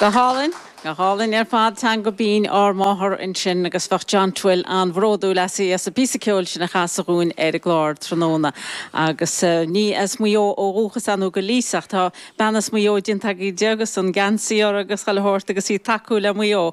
Go hálainn, go hálainn ar fad. Teanga Bhinn ár Máthar ansin agus bheadh John Twin an-bhródúil asaibh as an bpíosa ceoil sin a chasadh dúinn ar an gclár tráthnóna. Agus ní as Maigh Eo ó dhúchas ann ó go Leith ach tá bean as Maigh Eo déanta agaibh di agus an geansaí uirthi agus chuile shórt agus í ag tacú le Maigh Eo.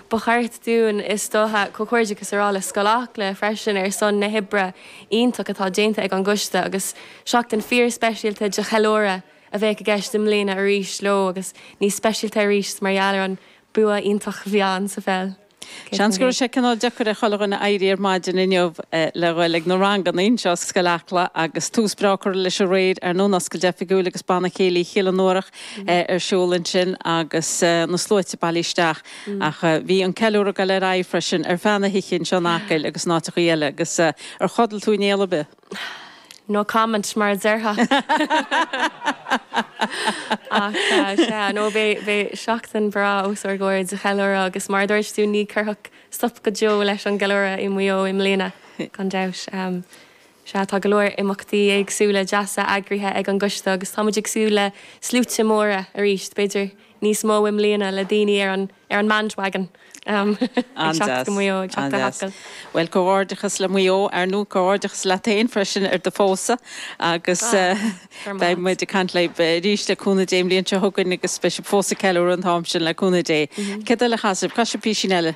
Ba cheart dúinn, is dócha, comhghairdeachas a rá le Scoil Acla freisin ar son na hoibre iontach atá déanta ag an gcoiste agus seachtain fíor speisialta de cheiliúradh a bheadh i gceist i mbliana arís leo agus níos speisialta arís mar gheall ar an bua iontach a bhí ann sa pheil. Seans go raibh sé cineál deacair ar chuile dhuine éirí ar maidin inniu le dhul ag na ranganna anseo i Scoil Acla agus tús breá curtha leis aréir ar ndóin oscailt oifigiúil agus Banna Céilí Chill Fhionnúrach ar siúl ansin agus na sluaite bailithe isteach. Ach bhí an ceiliúradh ag dul ar aghaidh freisin ar feadh na hoíche anseo in Acaill agus in áiteachaí eile agus ar chodail tú aon néal ar bith? No comment mar a déarfá! Ach sea, no beidh seachtain bhreá os ár gcomhair de cheiliúradh agus mar a dúirt tú ní chuirfear stop go deo leis an gceiliúradh i Maigh Eo i mbliana gan dabht. Sea, tá go leor imeachtaí éagsúla deasa eagraithe ag an gcoiste agus tá muid ag súil le sluaite móra arís, b'fhéidir níos mó i mbliana, le daoine ar an ar an mBandwagon ag teacht go Maigh Eo, ag teacht go hAcaill. Bhuel, comhghairdeachas le Maigh Eo, ar ndóigh, comhghairdeachas leat féin freisin ar do phósadh agus beidh muid ag caint libh arís, le cúnamh Dé, an bhliain seo chugainn agus beidh sibh fós ag ceiliúradh an t-am sin, le cúnamh Dé. Céard eile a chasfas sibh? Casfaidh sibh písín eile?